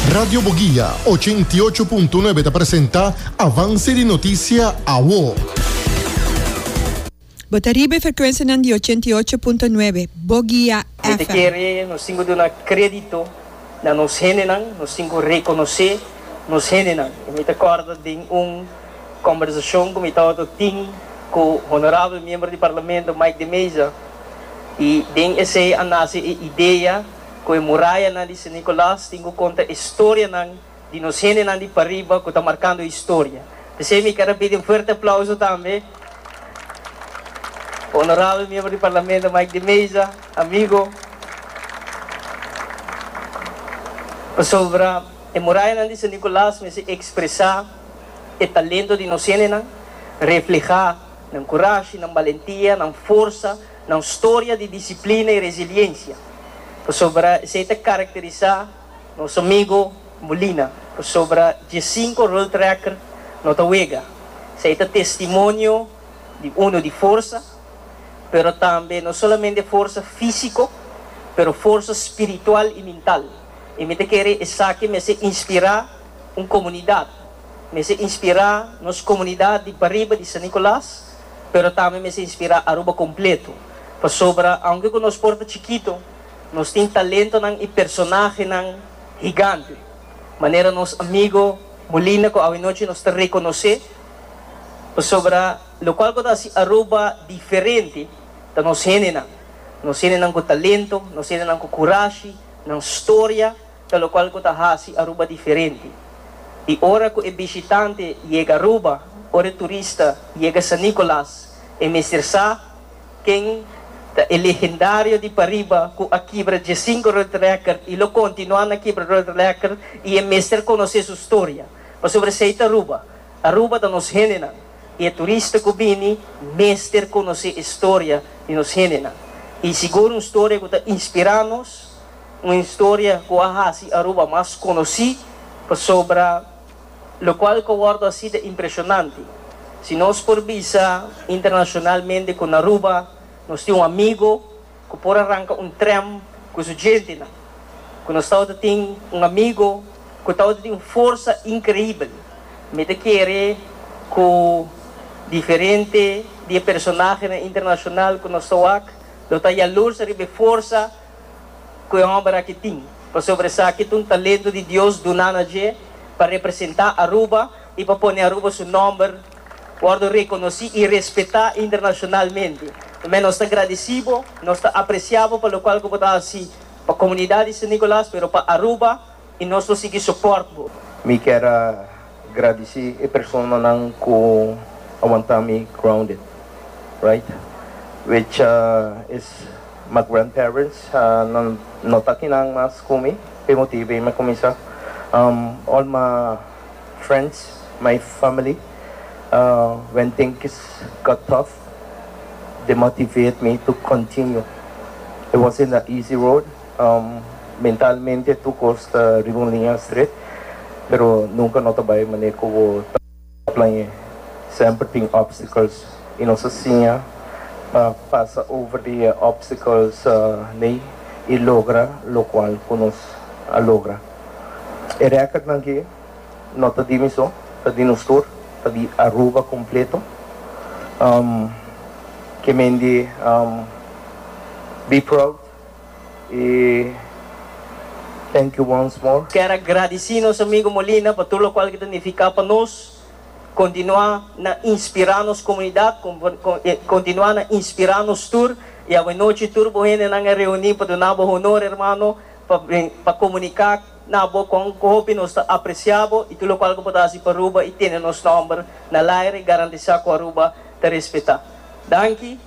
Radio Boguia, ochenta i ocho punto nuebe ta presenta Avance di Noticia Awo. Bo ta riba e frecuencianan di ochenta i ocho punto nuebe Boguia Mi ta kere nos tin cu duna credito na nos hendenan, nos tin cu reconoce nos hendenan. Y mi ta corda den un conversacion cu mi tabata tin cu Honorabel Miembro di Parlamento Mike de Meza y den esey a nace e idea, Ku e murayanan di San Nicolas tin ku konta e storianan di nos hendenan di pariba ku ta markando historia. P'esei mi keda pidi un fuerte aplauso tambe pa Honorabel Miembro di Parlamento Mike di Meza, amigo, pasobra e murayanan di San Nicolas mester ekspresá e talento di nos hendenan, reflehá nan kurashi, nan balentia, nan forsa, Nan storia di disiplina i resiliensia, pasobra esei ta karakterisá nos amigu Molina. Pasobra dje sinku Roltractor no ta wega. Esei ta testimonio di unu di forsa, pero tambe no solamente forsa físiko, pero forsa spiritual i mintal. I mi ta kere esaki mester inspirá un komunidat, mester inspirá nos komunidat di pariba di San Nicolas. pero tambe mester inspirá Aruba kompleto, pasobra aunke ku nos por ta chikitu, nos tin talentonan i personahenan higante, manera nos amigu Molina ku awanochi nos ta rekonosé, pasobra lokual ku ta hasi Aruba diferente ta nos hendenan, nos hendenan ku talento, nos hendenan ku kurashi, nan storia, Ta locual cu ta haci Aruba diferente. Y ora cu e bishitante yega Aruba, ora e turista yega San Nicolas, e mester sa ken ta e legendario di pariba cu a kibra diescinco road record y lo continua na kibra road record y e mester conoce su storia. Pasobra esey ta Aruba. Aruba ta nos hendenan y e turista cu bini mester conoce e storia di nos hendenan. Y sigur un storia cu ta inspira nos. un historia cu a haci Aruba mas conoci pasobra locual cu wordo así ta impresionante. Si nos por bisa internacionalmente cu na Aruba nos tin un amigo cu por a ranca un tren cu su gentenan, cu nos tabata tin un amigo cu tabata tin un forsa increibel, mi ta kere cu diferente di e personahenan internacional cu nos ta wak lo ta yalursa riba e forsa. ku e hòmber aki tin, pasobra esaki ta un talentu di Dios duna na dje pa representá Aruba i pa pone Aruba su nòmber wòrdu rekonosí i respetá internashonalmente. Mè, nos ta gradesí bo, nos ta apresiá bo pa lokual ku bo ta hasi pa komunidat di San Nikolas, pero pa Aruba. I nos lo sigui soport bo. Mi kier a gradisi e personanan ku a wanta mi grounded right which is my grandparents nan no ta kinan mas ku mi p'e motibu ei mi a kuminsá all my friends my family when things got tough they motivate me to continue it wasn't a easy road. Mentalmente tur cos ta riba un liña stret, pero nunca no ta bay mané cu bo ta plañe. Semper tin obstacles y nos a siña pa pasa over di e obstacles ley y logra locual cu nos a logra. E recordnan aki no ta di mi so, ta di nos tur, ta di Aruba completo. Ke mende be proud. Y thank you once more. Kier a gradici nos amigo Molina pa tur locual cu ta nifica pa nos, continua na inspira nos comunidad, continua na inspira nos tur y awe nochi tur bo hendenan a reuni pa duna bo honor hermano, pa comunica na bo con hopi nos ta aprecia bo y tur locual cu bo ta haci pa Aruba y tene nos nomber na el aire garantisa cu Aruba ta respeta. Danki.